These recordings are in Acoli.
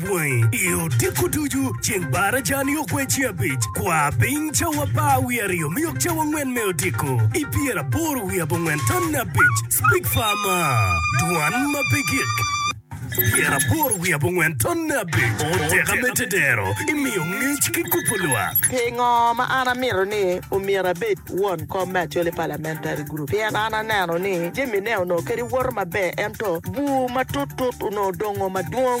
Bwangi i odiko ducu ceng Barajani okwe ci abic. Kwa piny cawa apar wiye aryo me yok cawa angwen me odiko i pyer aboro wiye abongwen tamne abic. Speak far ma. Dwan ma pe gik. Pyer aboro wiye abongwen tamne abic. O teka me tedero i miyo ngec ki kubo lwak. Pingo ma an amito ni omyero abed won kom me Acholi Parliamentary Group? Pien an aneno ni jamine onongo kadi woto maber ento bur matut tut onongo dongo madwong.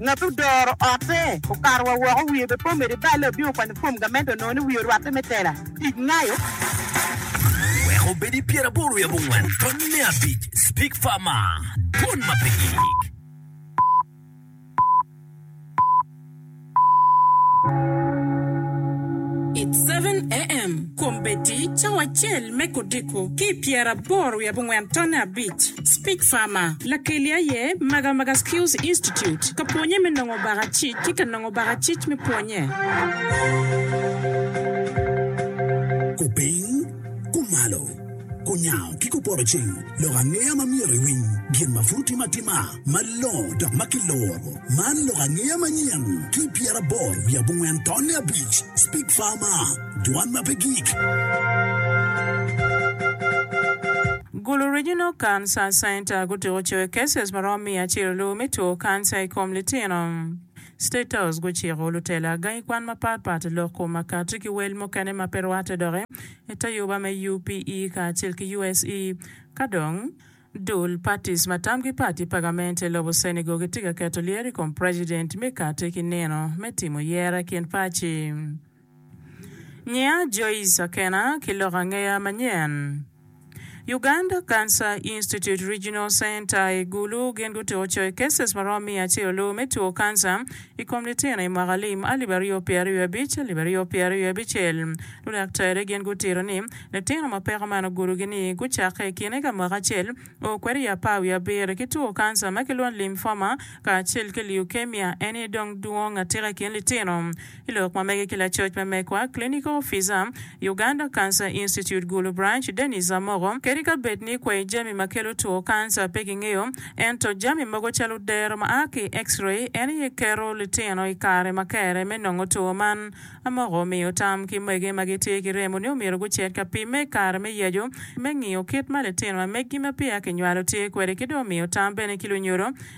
Ngat odoro otte okato wa woko wiye be po medo ibale obin okwanyo fom gamente onongo ni wiye orwatte me tela tic ngayo. Wek obed i pyeraboro i abongwen tony me abic speak far ma dwon ma pe gik. It's seven AM, Kombeddi cawa acel me kodiko ki i pyeraboro i abongwen tone abic. Speak Farmer, Lakeli aye Maga Maga Skills Institute ka pwonye me nongo baka cic ki ka nongo baka cic me pwonye. Ku piny, ku malo, ku nyango ki ku poto ceng, lok angeya ma myero iwiny, gin ma pud otim atima malongo dok ma kiloro. Man lok angeya manyen ki i pyeraboro wiye abongwen tonne abic. Speak Farmer. Dwan ma pe gik. Gulu Regional Cancer Center gutuko coyo cases maromo miya acel luu me two cancer i kom litino. State House guciko lutela gangi kwan mapat pat lok kom makati ki wel mukene ma pe rwate dok i tayuba me UPE kacel ki USE. Ka dong Dul parties ma tamgi pat i pagament i lobo Senegal gitye ka keto lyeto i kom president me kati ki nino me timo yere i kin paci. Ngiya Joyce Akena ki lok angeya manyen. Uganda Cancer Institute Regional Center i Gulu gin gutuko coyi cases maromo miya acel-lu me two kanca i kom litino i mwaka lim alip aryo pyera ryo abic, alip aryo pyera ryo abicel. Ludaktari gin gutito ni litino ma peko man ogudogi ni gucakke i kine ka mwaka acel o kwede i apar wiye abiro ki two kanca ma kilwongo ni lymphoma kacel ki leukemia eni dong dwong atika i kin litino. I lok ma mege ki lacoc me mekwa, clinical officer, Uganda Cancer Institute Gulu Branch, Dennis Amoko, kadi ka bed ni kwayo jami ma kelo two kanca pe kingeyo, ento jami mogo calo dero ma a ki i X-ray en aye keto litino i kare ma kere me nongo two man. Amoko omiyo tam ki mwege ma gitye ki remo ni omyero gucit ka pimme i kare me yecu me ngiyo kit ma litino ma meggi ma peya kinywalo tye kwede ki dong omiyo tam bene ki lunyodo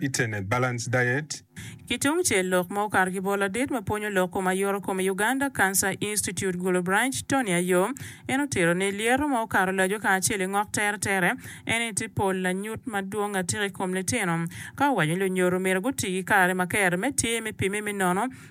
Internet Balance Diet. Ki tung cel, lok ma okato ki bot ladit ma pwonyo lok kom aye oto kom i Uganda Cancer Institute Gulu Branch, Tony Ayom, en otito ni, Lyeto ma okato laco kacel i ngok teretere en eni tye pol lanyut madwong atika i kom litino. Ka owaco ni lunyodo omyero guti ki kare ma kero me tye me pimme me nono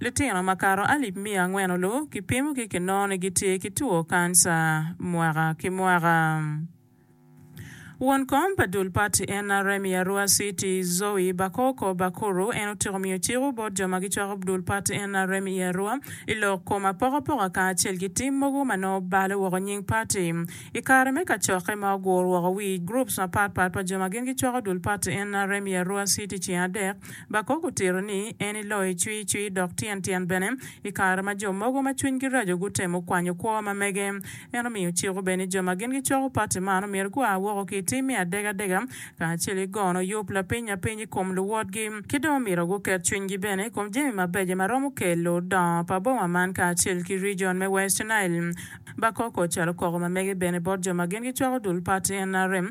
Litino makato alip miya angwen-nu kipimogi kinongo ni gitye ki two kanca mwaka ki mwaka. Won kom pa dul pati NRM i Arua City, Zoe Bakoko Bakuru en otyeko miyo cik-u bot jo ma gicwako dul pati NRM i Arua i lok kom apokapoka kacel ki tim mogo ma nongo balo woko nying pati i kare me kacokke ma ogur woko wi groups mapatpat pa jo ma gin gicwako dul pati NRM i Arua City ceng adek Bakok otito ni, En iloyo icwicwi dok tyen tyen bene i kare ma jo mogo ma cwinygi raco gutemo kwanyo kwo ma mege. En omiyo ciko bene ni jo ma gin gicoko pati man omyero gua woko ki i tim me adega adega kacel ki gono yub lapiny apiny i kom luwotgi, ki dong omyero guket cwinygi bene i kom jami mabeco ma romo kelo dongo pa boma man kacel ki rijon me West Nile. Bakok ocalo koko ma mege bene bot jo ma gin gicwako dul pati nrm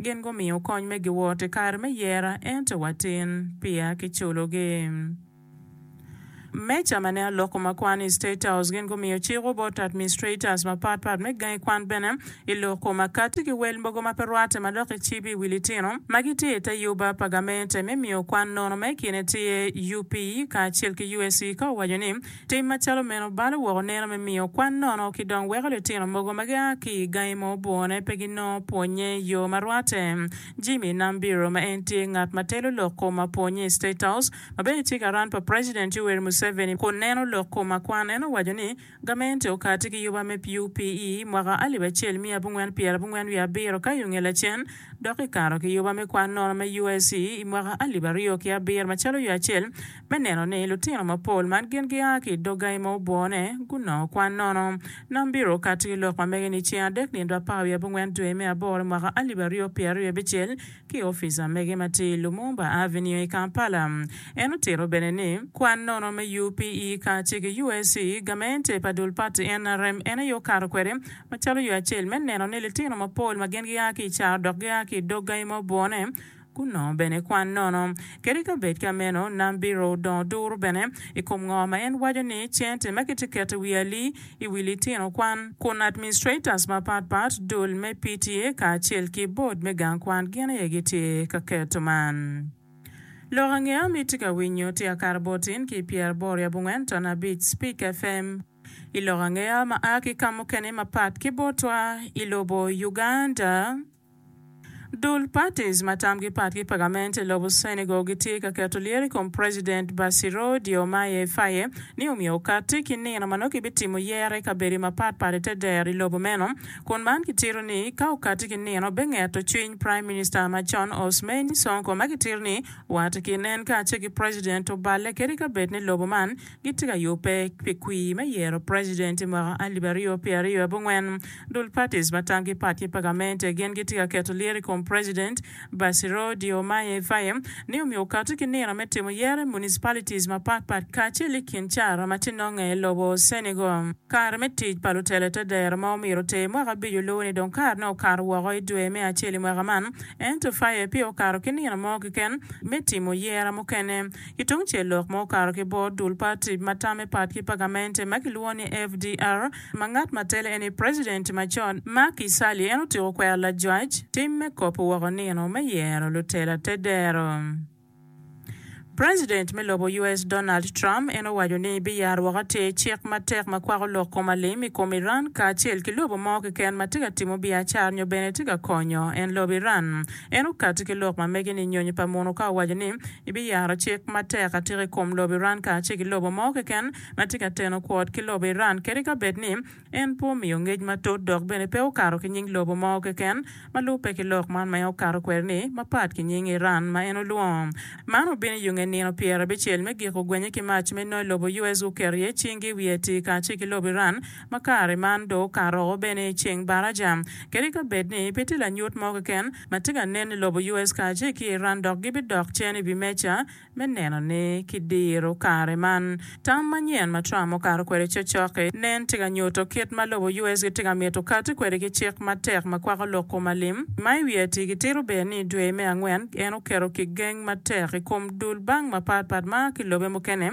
Gin gumiyo kony me giwot i kare me yera, ento watin peya kiculogi. Me cama ne aloko ma kwan i State House, gin gumiyo ciko bot administrators mapat pat me gangi kwan bene i loko ma kati ki wel mogo ma pe rwate ma dok icibi i wi litino ma gitye i te yuba pa gamente me miyo kwan nono ma i kine tye UP kacel ki USC ka owaco ni Tim macalo meno balo woko neno me miyo kwan nono ki dong weko litino mogo ma gia ki i gangi mo bwone pe ginongo pwonnye i yo ma rwatte. Jimmy Nambiro, ma en tye ngat ma telo lok kom apwonnye i State House, ma bene tye karan pa President Yoweri Museveni kun neno lok kom akwan, en owaco ni gamente okati ki yuba me PUP i mwaka alip acel miya abongwen pyera abongwen wiye abiro ka i onge lacen dok kikato ki yuba me kwan nono me USE i mwaka alip aryo ki abiro macalo yo acel me neno ni lutino mapol ma gin gia ki i dog gangi ma obwone gunongo kwan nono. Nam biro okato ki lok ma mege ni ceng adek nino apar wiye abongwen dwe me aboro mwaka alip aryo pyeraryo abicel ki opica mege ma tye i Lumumba Avenue i Kampala. En otito bene ni, kwan nono me UPE kacel ki UAC, gamente pa dul pati NRM en aye okato kwede macalo yo acel me neno ni litino mapol ma gin gia ki i caro dok gia ki i dog gangi ma obwone, kun nongo bene kwan nono. Kadi ka bed ka meno, nam biro dongo duru bene i kom ngo ma en waco ni cente ma kitye keto i wi ali i wi litino kwan, kun administrators mapat pat, dul me PTA kacel ki board me gang kwan gin aye gitye ka keto man. Lok ange am itye ka winyo tika kare bot in ki pyer boro ya bungwen ton abic Speak FM i lok ange am ma a ki kamukene mapat ki botwa i lobo Uganda. Dul parties ma tamgi pat ki pagament i lobo Senegal gitye ka keto lyeto i kom president Bassirou Diomaye Faye ni omyero okatti ki nino ma nongo kibitimo yero i kabedi mapat pat i te dero i lobo meno kun man kitito ni ka okatti ki nino bengeto cwiny prime minister macon Ousmane Sonko ma kitito ni wat ki nen kace ki president oballe kadi kabed ni lobo man gitye ka yubbe pi kwir me yero preciden i mwaka alip aryo pyera aryo abongwen. Dul parties ma tamgi pat ki pa gamente gin gitye ka keto lyeto i kom preciden Bassirou Diomaye Faye ni omyero okati ki nino me timo yero i municipalities mapat pat kacel i kin cara ma tye nonge i lobo Senegal. Kare me tic pa lutelo te dero ma omyero oter mwaka abico luwo ni dong kare ne okato woko i dwe me acel i mwaka man ento Faye peya okato ki nino mo keken me timo yera mukene. Ki tung cel lok ma okato ki bot dul pa tip ma tamme pat ki pa gamente ma kilwongo ni FDR ma ngat ma tele en ni President macon Macky Sally en otyeko kwero lajwac tim me kopo woko nino me yero lutela te dero. President me lobo US Donald Trump en owaco ni biyaro woko atir cik matek ma kwako lok kom alim i kom Iran kacel ki lobo mo keken ma tye ka timo biacara nyo bene tye ka konyo en lobo Iran En okatti ki lok ma mege ni nyonyo pa muno ka owaco ni ibiyaro cik matek atika i kom lobo Iran kacel ki lobo mo keken ma tye ka teno kwot ki lobo Iran kadi ka bed ni en pe omiyo ngec matut dok bene pe okato ki nying lobo mo keken ma lubbe ki lok man ma en okato kwede ni mapat ki nying Iran ma en olwongo Man obino i yunge nino pyerabicel me giko gwenye ki mac me noy lobo US guketo iye cinggi i wi Haiti kacel ki lobo Iran ma kare man dong okato o bene i ceng baraca, kadi ka bed ni pe tye lanyut mo keken ma tye ka nen i lobo US kacel ki Iran dok gibidok cen i wi meja me neno ni kidiro kare man. Tam manyen ma Trump okato kwede cokcok-ki nen tye ka nyuto kit ma lobo US gitye ka mito kati kwede ki cik matek ma kwako lok kom alim, ma i wiye tye kitito bene ni dwe me angwen en oketo kigeng matek i kom dul bank mapatpat ma ki lobe mukene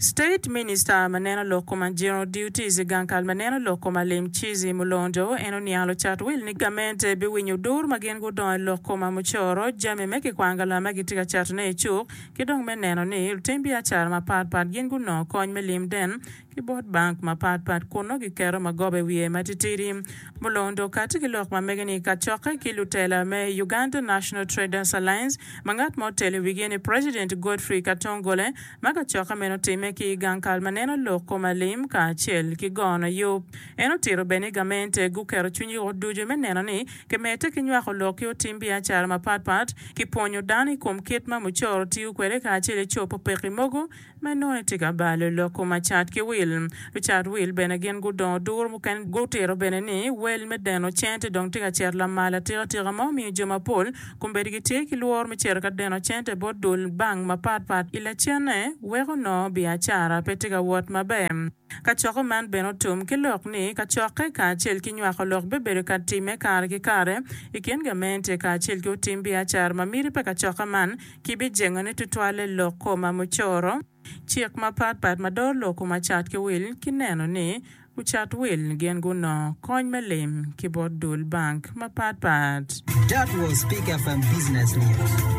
State Minister ma neno lok koma General Duties gang kal ma neno lok koma lim Chizzy Mulondo en oniang lucat wil ni gamente biwinyo dur ma gin gudongo i lok koma mucoro jami me kikwang galam ma gitye ka cato ne icuk ki dong me neno ni lutim biacara mapat pat gin gunongo kony me lim den ki bot bank mapat pat kun nongo giketo magoba i wiye matitidi. Mulondo kati ki lok ma mege ni kacokke ki lutela me Uganda National Traders Alliance ma ngat ma otelo i wigi ni President Godfrey Katongole ma kacokke meno otimme ki i gang kal ma neno lok kom alim kacel ki gono yub. En otito bene ni gamente guketo cwinygi woko ducu me neno ni kimedde ki nywako lok ki otim biacara mapatpat ki pwonyo dano i kom kit ma mucoro tiyo kwede kacel i cobo pekki mogo ma nongo etye ka balo loko macat ki wil. Lucat wil bene gin gudongo duru, mukene gutito bene ni wel me deno cente dong tye ka cito lamal atika tika ma omiyo jo mapol kombeddi gitye ki lworo me cito ka deno cente bot dul bank mapat pat i lacenne weko nongo biacara pe tye ka wot maber. Kacoko man bene otum ki lok ni kacokke kacel ki nywako lok bibedo ka timme kare ki kare i kin gamente kacel ki otim biacara ma miti pa kacoka man kibijengone tutwal i lok koma mucoro, cik mapat pat ma doro lok koma cat ki wil ki neno ni lucat wil gin gunongo kony me lim ki bot dul bank mapat pat. That was Peak FM Business News.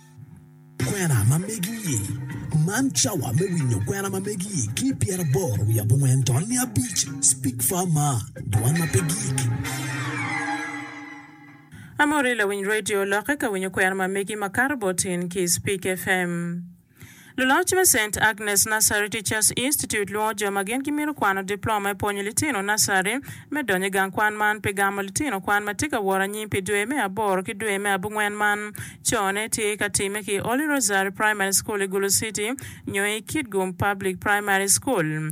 Kwena ma megi-i. Man cawa me winyo kwena ma megi-i ki pyeraboro wiye abongwen to niya abic. Speak Far Mar, Dwan ma pe Gik. Amor i lawiny radio lokke ka winyo kwena ma megi makato bot in ki Speak FM. Luloc me Saint Agnes Nursery Teachers Institute lwongo jo ma gin gimito kwano diploma me pwonyo litino nacari me donyo i gang kwan man pi gamo litino kwan ma tye ka woro anyim pi dwe me aboro ki dwe me abungwen man. Cone, tye ka timme ki i Holy Rosary Primary School i Gulu City nyo i Kitgum Public Primary School.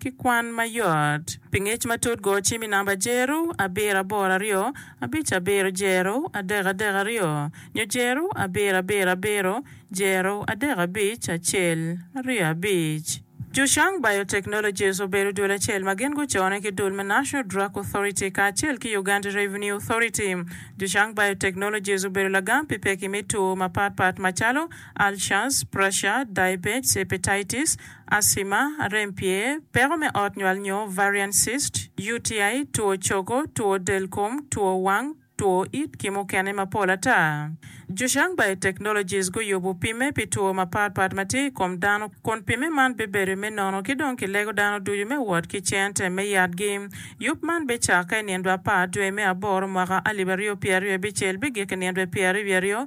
ki kwan ma yot. Pi ngec matut go cim i namba jeru abiro aboro aryo abic abiro jeru adek adek aryo nyo jeru abiro abiro abiro jeru adek abic acel aryo abic. Zhushang Biotechnologies obedo dul acel ma gin gucone ki dul me National Drug Authority kacel ki Uganda Revenue Authority. Zhushang Biotechnologies obedo lagam pi pekki me two mapatpat macalo, Ulcers, Pressure, Diabetes, Hepatitis, asima, rem pye, peko me ot nywal nyo varian cyst, UTI, two cogo, two del kom, two wang, two it ki mukene mapol ata. Zhuxiang Biotechnologies guyubu pimme pi two mapat pat ma tye i kom dano kun pimme man bibedo me nono ki dong kilego dano ducu me wot ki cente me yatgi. Yub man bicakke i nindwa apar dwe me aboro mwaka alib aryo pyeraryo bicel bigik i nindwe pyeraryo aryo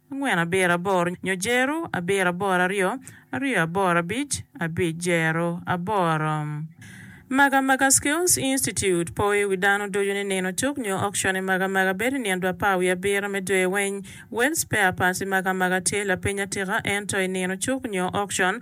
angwen abiro aboro nyo jero abiro aboro aryo aryo aboro abic abic jero aboro. Magamaga Skills Institute po i wi dano ducu ni nino cuk nyo auction i Magamaga bedo i nino dwa apar wiye abiro me dwe weng. Wells Spare Parts i Magamaga tye lapeny atika ento i nino cuk nyo auction,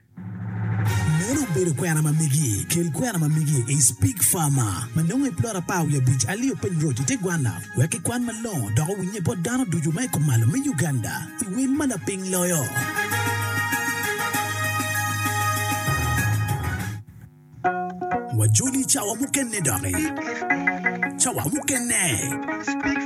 Meno obedo kwena ma megi kel kwena ma megi is pig farmer ma nongo i plot apar wiye abic alio piny road i te gwanna wek ki kwan malongo dok owinye bot dano ducu ma i kumalo me Uganda i wel ma laping loyo. Wajoli cawa mukene doki cawa mukene.